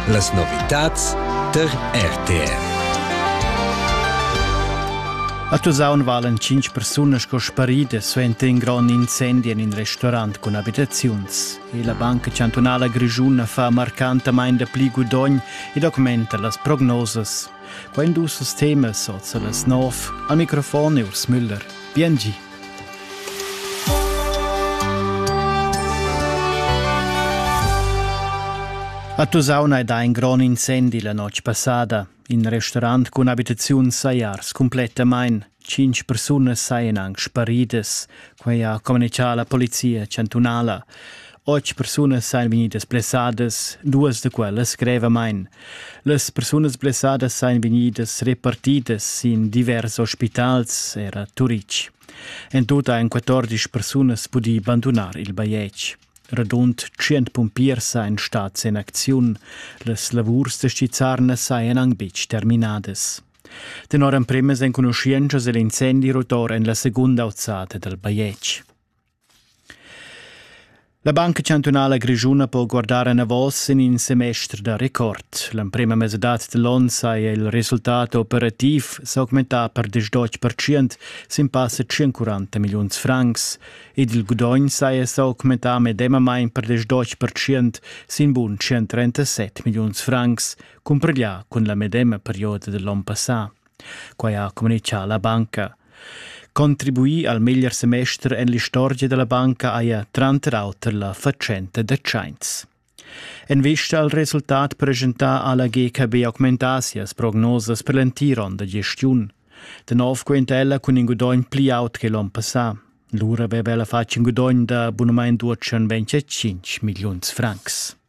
Las novitads tar RTR. A Tusaun valen tschintg persunas sco sparidas suenter in grond incendi en in restaurant cun abitaziuns. E la Banca Chantunala Grischuna fa marcantamain dapli gudogn e documenta las prognosas. Quai dus temas oz a las nov. Al microfon è Urs Müller. Bien gi. A Tusauna è dà in grond incendi la notg passada. In restaurant cun abitaziun sajars cumplettamain. Cinc persunas sajan anc sparidas, quai ha communicà la polizia chantunala. Otg persunas sajan vegnidas blessadas, duas da quellas grevamain. Las persunas blessadas sajan vegnidas repartidas sin divers ospitals, era Turitg. En tut han 14 persunas pudì bandunar il bajetg. Radund 100 pumpiers sajan stads en acziun. Las lavurs da stizzarna sajan anc betg terminadas. Tenor emprimas enconuschientschas è l'incendi rotor en la segunda auzada dal bajetg. La Banca chantunala grischuna po guardar enavos sin in semester da record. L'emprima mesadad dall'onn saja il resultat operativ s'augmentà per 18% sin passa 140 milliuns francs ed il gudogn saja s'augmentà medemamain per 18% sin bun 137 milliuns francs, cumpareglià cun la medema perioda dall'onn passà. Quai ha communitgà la banca. Contribuì al meglier semester en l'istorgia da la banca haja tranter auter la fatschenta da tschains. En vista al resultat presentà ha la GKB augmentà sias prognosas per l'entir onn da gestiun. Da nov quenta ella cun in gudogn pli aut che l'onn passà. Lura aveva ella fatg in gudogn da abunament d'otschen 25 milliuns francs.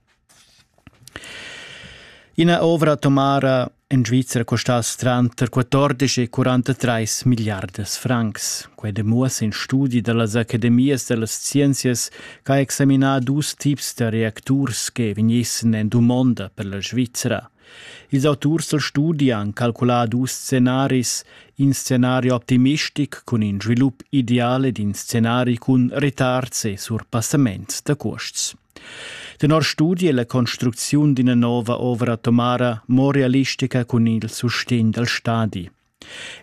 Ina ovra atomara en Svizra custass tranter 14 e 43 milliardas francs. Quei demuossa in studi dallas academias dallas scienzias che ha examinà dus tips da reacturs che vegnissen en dumonda per la Svizra. Ils auturs dal studi han calculà dus scenaris, in scenario optimistic cun in svilup ideale d'in scenari cun retards e surpassaments da cuosts. Tenor studi è la construcziun d'ina nova ovra tomara mo realistica cun il sustegn dal stadi.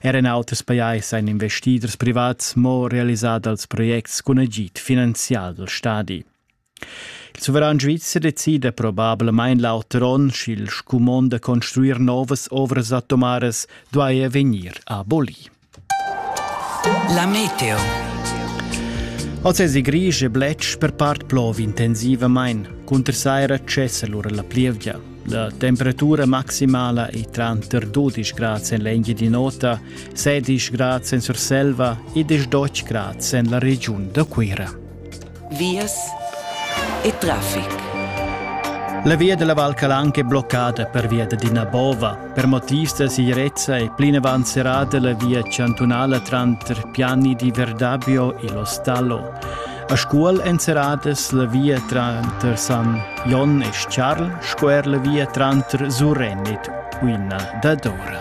Er en auters pajais ein investiders privats mo realisat als projects cun agid finanzial dal stadi. Il suveran svizzer decida probablamain l'auter onn, sch'il scumond da construir novas ovras atomaras duaja vegnir aboli. La meteo. Oz è gris e bletsch per part plov intensivamain. Cunter saira cessa lura la plievgia. La temperatura maximala è tranter 12 grad en l'Engie di Nota, 16 grad en Surselva e 18 grad en la regiun da Cuira. vias e traffic. La via della Val Calanca è bloccata pervia d'ina bova. Per motivs da sicurezza è plinavant serrata la via chantunala tranter Piani di Verdabio e Lo Stallo. A Scuol èn serradas la via tranter San Jon e Charl sco er la via tranter Surrenit, Uina dadora.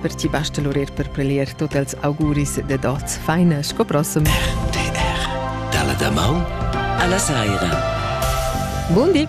Per ti basta l'urer per prelier tot els auguris ded oz faina sco prossem. RTR Dalla damaun alla saira. Bundi!